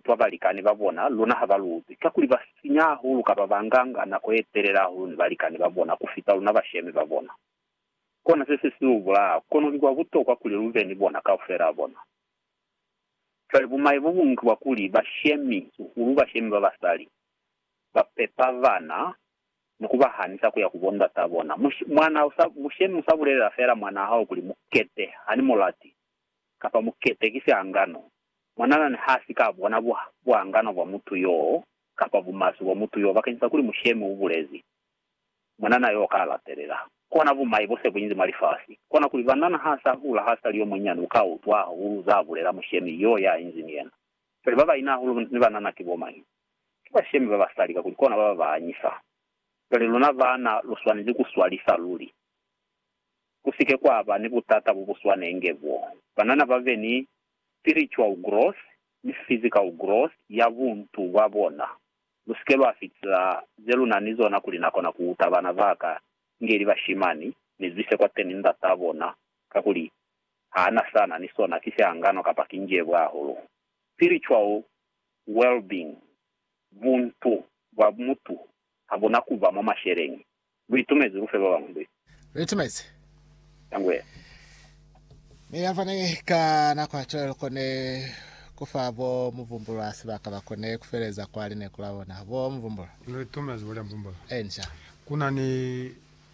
Fa balikani ba bona, luna ha ba luzi, kakuli ba sinya hahulu kaba ba nga nga nako ye telele hahulu ni balikani ba bona ku fita luna bashemi ba bona. Kona se se si lu bulaya, kono ki kwa butokwa kuli lu be ni bona kaufelaa bona. Cwale bumai bo buñwi ki bwa kuli bashemi, hahulu bashemi ba basali, ba pepa bana ni ku ba hanisa ku ya ku bondataa bona. Mushemi u sa bulelela feela mwanaa hao kuli, Mu kete, ha ni mu lati. kapa mukete ki siangano, mwananani ha si ka bona buangano bwa mutu yoo kapa bumaswe bwa mutu yoo bakeñisa kuli mushemi u bulezi, mwanana yoo ka latelela. Kona bumai bo se bu inzi mwa lifasi, kona kuli banana ha sa hula ha sa li yo munyinyani u ka utwa hahulu za bulela mushemi yoo ya inzi ni yena. Cwale ba baina hahulu ni banana ki bo mañi? Ki bashemi ba basali kakuli kona ba ba anyisa. Cwale luna baana lu swanezi ku swalisa luli. ku si ke kwa ba ni butata bo bu swanenge bo banana ba be ni spiritual growth ni physical growth ya buntu bwa bona. Lu si ke lwa fitisa ze lu na ni zona kuli na kona ku uta bana ba ka inge li bashimani, mi lu ise kwateni ndat'a bona, kakuli ha na sa na ni sona ki sihangano kapa ki njebwa hahulu. Spiritual well-being, buntu bwa mutu, ha bu na ku ba mwa masheleñi. Lu itumezi ku fe ba bañwi luli. Lu itumezi. Ka ngu ye. Ne ya fani ka nako ya cwale, lu koni ku fa bo Muvumbulwa sibaka ba koni ku feleza kwa lineku la bona. Bo Muvumbulwa. Lu itumezi bo Muvumbulwa. Enca. Ku na ni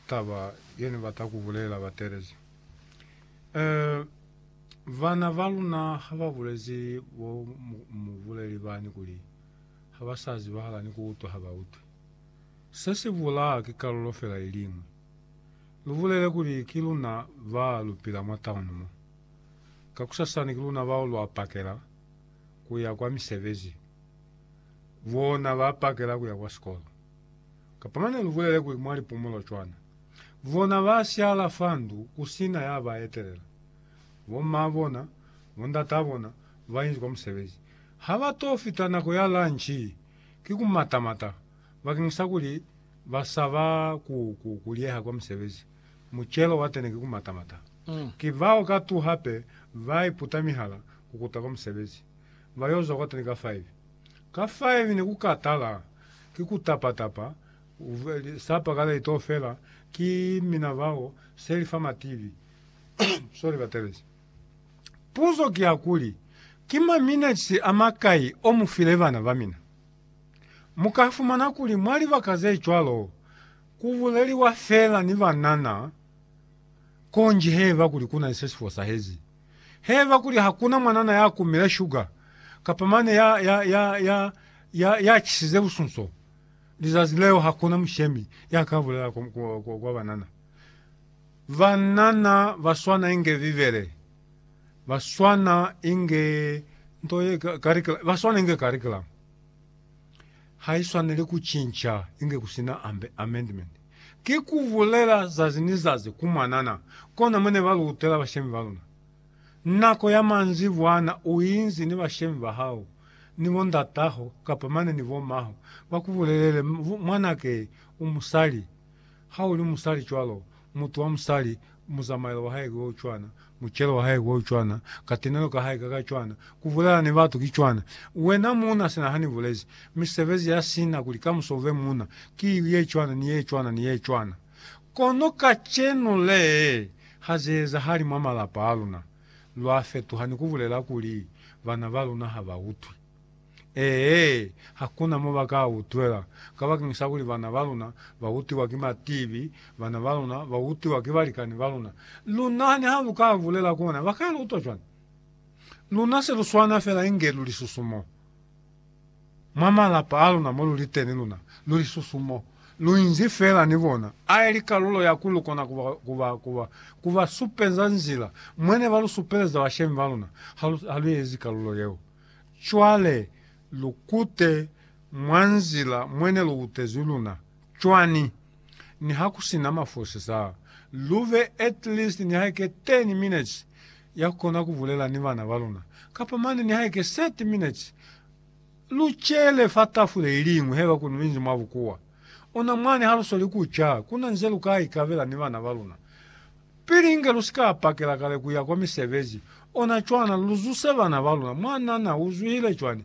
taba ye ni bata ku bulela bateelezi. Eh, bana ba luna ha ba bulezi bo mubuleli bani kuli ha ba sa zibahala ni ku utwa ha ba utwi. Se si bulaa ki kalulo fela iliñwi. Lu bulele kuli ki luna ba lu pila mwa tauni mo. Kakusasani ki luna bao lwa pakela ku ya kwa misebezi, bona ba pakela ku ya kwa sikolo. Kapa mane lu bulele kuli mwa lipumulo cwana. Bona ba siala fa ndu ku si na ya ba etelela. Bo maa bona, bo ndataa bona ba inzi kwa musebezi. Ha ba t'o fita nako ya lanchi, ki ku mata-mata bakeng sa kuli ba sa ba ku, ku, ku liyeha kwa musebezi. Mucelo wa tene ki ku mata-mata. Ki bao ka tu hape ba iputa mihala ku kuta kwa musebezi. Ba yo zwa kwa tene ka faivi. Ka faivi ne ku ka tala, ki ku tapa-tapa, sapa ka laitofela, ki mina bao seli fa mativi. Sorry, Batelezi. Puzo ki ya kuli, Ki maminetsi a makai o mu file bana ba mina? Mu ka fumana kuli mwa libaka ze cwalo ku buleliwa feela ni banana konji haiba kuli ku na ni se si fosahezi. Haiba kuli ha ku na mwanana ya kumile shuga kapa mane ya, ya, ya, ya, ya, ya chisize busunso, lizazi leo ha ku na mushemi ya ka bulela kwa, kwa, kwa banana. Banana ba swana inge Bibele, ba swana inge nto ye karikulamu, ba swana inge karikulamu. Ha i swaneli ku cinca inge ku sina amendment. Ki ku bulela zazi ni zazi ku mwanana, kona mo ne ba lutela bashemi ba luna. Nako ya manzibwana u inzi ni bashemi ba hao, ni bo ndataho, kapa mane ni bo maho, ba ku bulelele, Mwanake u musali. Ha u li musali cwalo, mutu wa musali, muzamaelo wa hae ki o cwana, mucelo wa hae ki o cwana, katenelo ka hae ka ka cwana, ku bulela ni batu ki cwana. Wena muuna, sina ha ni bulezi, mi sebezi ya sina kuli kamuso u be muuna, ki ili ye cwana, ni ye cwana, ni ye cwana. Kono kacenu le, ha ze ezahali mwa malapa a luna. Lwa fetuha ni ku bulela kuli, Bana ba luna ha ba utwi. Ee, hakuna mo ba ka utwela, kabakeng sa kuli bana ba luna ba utiwa ki matibi, bana ba luna ba utiwa ki balikani ba luna. Lu nahane ha lu ka bulela kona, ba ka lu utwa cwani? Luna se lu swana fela inge lu lisusu mo. Mwa malapa a luna mo lu li teni luna lu lisusu mo. Lu inzi fela ni bona, a ili kalulo ya kuli lu kona ku ba, ku ba, ku ba, ku ba supeza nzila, mwa ne ba lu supeleza bashemi ba luna, ha lu, ha lu ezi kalulo yeo. Cwale, lu kute mwa nzila mwene lu kutezi luna. Cwani? Niha ku sina mafosi sa, lu be at least nihaike ten minutes ya ku kona ku bulela ni bana ba luna, kapa mane nihaike thirty minutes. Lu cele fa tafule iliñwi haiba ku binzi mwa bukuwa. Ona mwani ha lu soli ku ca, kuna nze lu ka ikabela ni bana ba luna. Pili inge lu si ka pakela kale ku ya kwa misebezi, ona cwana lu zuse bana ba luna. Mwanana u zwihile cwani?